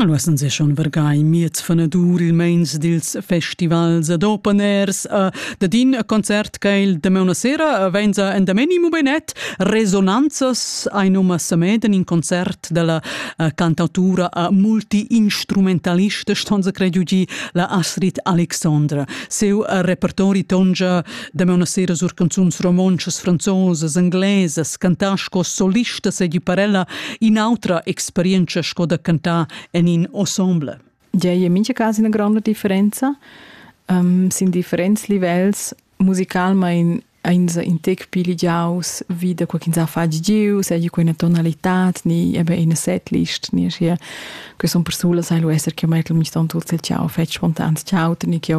Alura sun se schon vargai miez fanadur il meins dils festivals ad open airs uh, dad in concert che il damauna sera venza endameni mubenet resonanzas ein uma sameden in concert della uh, cantautura uh, multi-instrumentalista stonza credu gi la Astrid Alexandra seu uh, repertori tongia Damaun a sera sur canzuns romontschas, franzosas, inglesas, cantar sco solista seigi per ella in'autra experienza sco da cantar en in ensemble. Ja, in mincha cas una grande differenza. Um, sin differents livells musicalmain eins in tec pli ligiaus wie da qualcun sa fa giu, sei ju quella tonalität ni eben in setlist ni hier que son persulas sai lo esser che mai tlum ston tut se ciao fetch spontan ciao ni che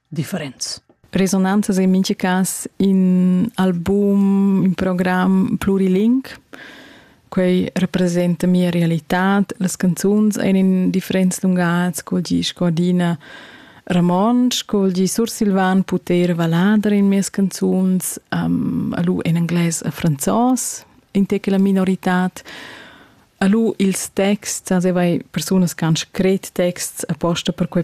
differents. Resonantas in mincha cas in album, in program pluriling. Quei representa mia realitad. Las canzuns ein in differents lungats, sco di sco adina Ramon, sco di Sursilvan puter valadar in mias canzuns, um, alu en anglais a franzos, in te che la minoritad. Alu ils texts, also vai persunas che han scret texts apposta per quei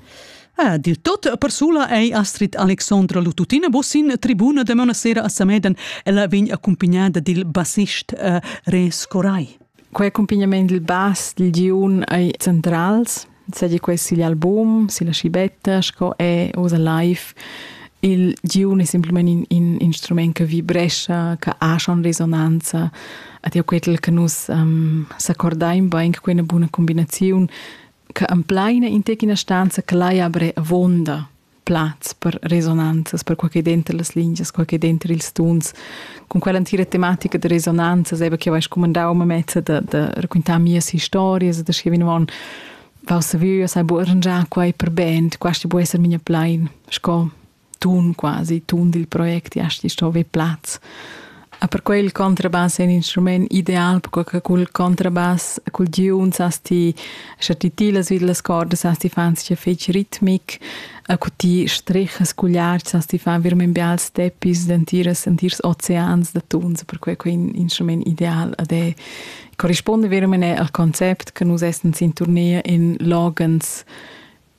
Ah, dil tot persula ei Astrid Alexandra Lututina Bossin tribuna de mona sera a Sameden. Ella vegn accompagnada dil bassist uh, Res Corai. Quei accompagnament dil bass dil giun ei centrals, sedi quei sigl album, silla schibetta, sco è Osa Live. Il giun è semplicemente un, un instrument che vibrescia, che ha schon risonanza. Ed io quel che nus um, s'accordaim bain che quella buona combinazione che empleina in tec ina stanza che lai abrer avonda plaz per resonanzas, per quel che denter las lingias, quel che denter ils tuns, con quell'antira tematica de resonanzas, eben che vais comandau me mezza de, de raccontar mias historias, de scrivere on Vau saviu, sai bu arrangiar quai per band, questi bu esser mia plein, sco tun quasi, tun dil project, ja sti sto vi plaz. A per quel contrabass è un instrument ideal, perché col contrabass, col giuns hast ti, sche ti tilas vid las cordas, hast ti fan sia fec ritmic, a cu ti strechas cugliards, hast ti fan virmen bials teppis, dentiras, dentirs oceans da tuns, per quei quei un instrument ideal ad è corrisponde veramente al concept che nus essen in tournee in logens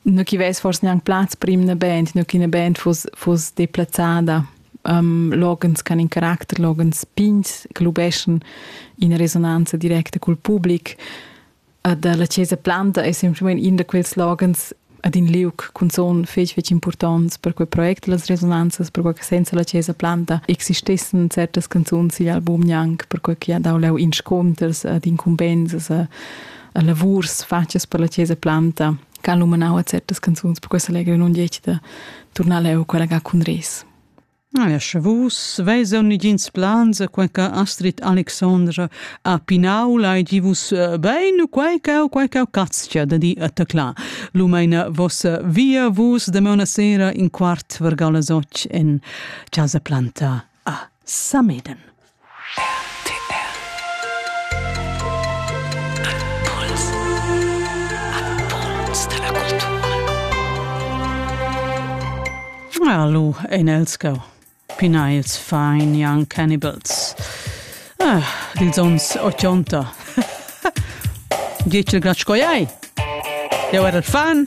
nu chi vess forse gnanc plaz per in band, nu chi 'na band fuss, fuss deplazzada. Um, loghens ch'han in caracter, loghens pigns che lubeschan ina resonanza directa cul public. Ed la Chiesa Planta è semplicemente in da quels loghens ad in liuc cunzon fetg fetg importants per quei project las resonanzas per quei che senza la Chiesa Planta existessen certas canzuns sigl album gnanc per quei che ha dau leu insconters ad incumbensas lavurs fatgas per la Chiesa Planta che ha lumanau a certas canzuns per questo allegro non dieci da tornare a quella che cun res. Ah, ja, sche vus veis nigins plans a quei che Astrid Alexandra a Pinau lai gi vus eh, bein quei che quei che caztia da di attacla. Lumeina vossa via vus de una sera in quart vergau las och in casa planta a Sameden. RTL Impuls Impuls da la cultura Alu ein els go. Pinails fine young cannibals. Ah, dils ons 80. Dietl gratsch coi ai. Deu era fan.